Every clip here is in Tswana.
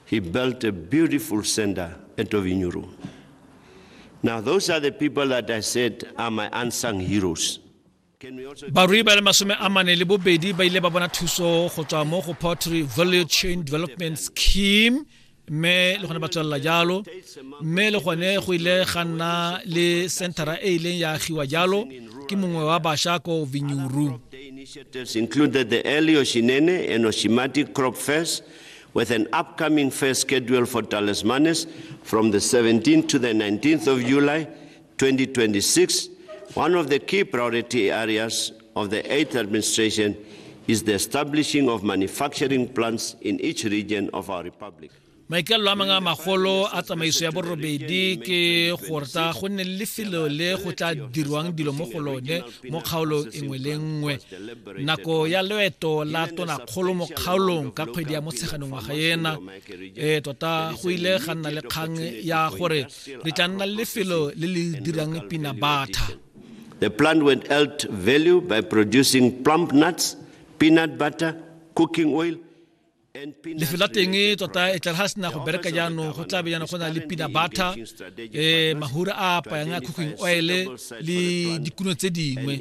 He built a beautiful center at Ovinyuru. Now, those are the people that I said are my unsung heroes. barui ba le masome a mane le bobedi ba ile ba bona thuso go tswa mo go pottery value chain development scheme mme le gone ba tswelela jalo mme le gone go ile ga nna le centera e ileng ya agiwa jalo ke mongwe wa basha ko vinyuru included the early Oshinene and Oshimati crop fairs with an upcoming fair schedule for Talismanes from the 17th to the 19th of July 2026, one of the key priority areas of the eighth administration is the establishing of manufacturing plants in each region of our republic. maikalelo a mangwe a magolo a tsamaiso ya borobedi ke gore tsa go nne le lefelo le go tla dirwang dilo mo go lone go mo kgaolong engwe le nngwe nako ya loeto la tonakgolo mo kgaolong ka kgwedi ya motsheganong ngwaga ena e tota go ile ga nna le kgang ya gore re tla nna le lefelo le le dirang pina batha The plant went out value by producing plump nuts, peanut butter, cooking oil, lefelo la teng tota e tlare ga sena go bereka jaanong go tla be jaanong go na le pina batha um eh, mahura a apayang a cooking oil le dikuno tse dingwe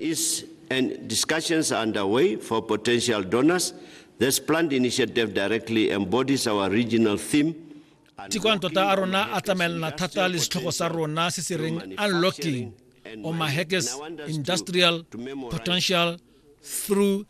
and discussions are underway for potential donors this plant initiative directly embodies our regional theme tikwana tota a rona a tsamaelana thata le setlhogo sa rona se se reng unlocking omaheges industrial potential through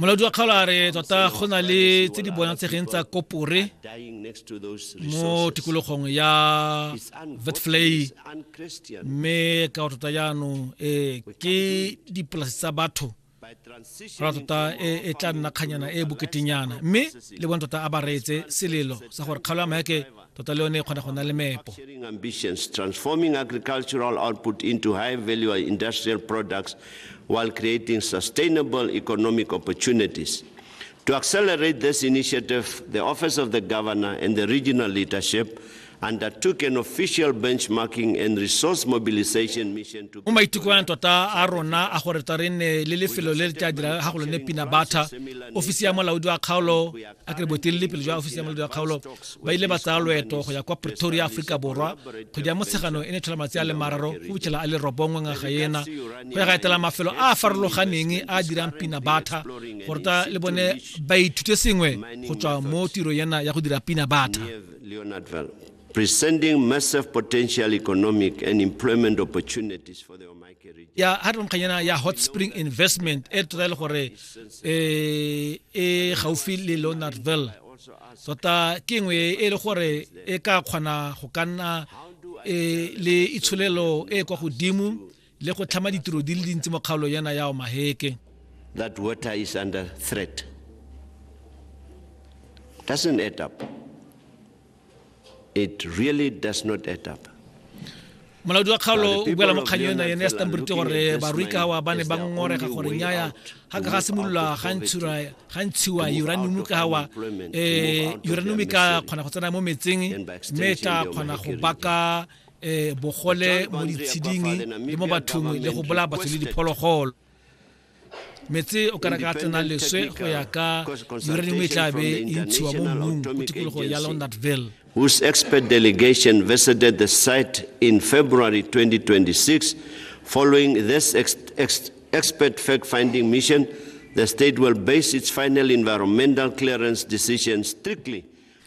molaodi wa kgaolare tota go na le tse di bonatsegeng tsa kopore mo tikologong ya vetflay mme ka go tota jaanong ee ke dipolase tsa batho ra tota e, e tla nna kganyana e boketenyana mme le bone tota a ba reetse selelo sa gore kgaolo ya maheke tota le yone e kgona go nna le meepo ambitions transforming agricultural output into high value industrial products while creating sustainable economic opportunities to accelerate this initiative the office of the governor and the regional leadership undertook an official benchmarking and resource mobilization mission to mo maitikoang tota a rona a gore tsa re nne le lefelo le le tla dira ga go lone pina batha ofisi ya molaodi wa kgaolo a kere boetelele pele jwa ofisi ya molodi wa kgaolo ba ile ba tsaya loeto go ya kwa pretoria aforika borwa kgwedi ya motsheganong e ne tlhola matsi a le mararo go fitlhela a le robongwe ngaga ena go ya ga etela mafelo a a farologaneng a a dirang pina batha go ruta le bone ba ithute sengwe go tswa mo tiro ena ya go dira pina batha presenting massive potential economic and employment opportunities for the ya ha re nkganyana ya hot spring investment e tota e le gore e, e gaufi le leonardville tota ke nngwe e le gore e ka kgona go ka nna e, le itsholelo e kwa godimo le go tlhama ditiro di le dintsi mo kgaolong yana ya omaheke that water is under threat doesn't add up It really does not add up. molaodi wa kgaolo o buela mo kganyong ena yene ya stanbrit gore barwikawa ba ne ba ngorega gore nyaya ga ka ga simolola ga ntshiwa uranium ka wa um eh, uranium ka kgona go tsena mo metseng mme e tla kgona go baka um bogole mo ditsheding le mo bathong le go bolaya batho le diphologolo metse o ka reka tsena leswe go ya ka uranium e tlabe e ntshiwa mo mmung mo tikologong ya laundertville whose expert delegation visited the site in February 2026. Following this ex ex expert fact finding mission, the state will base its final environmental clearance decision strictly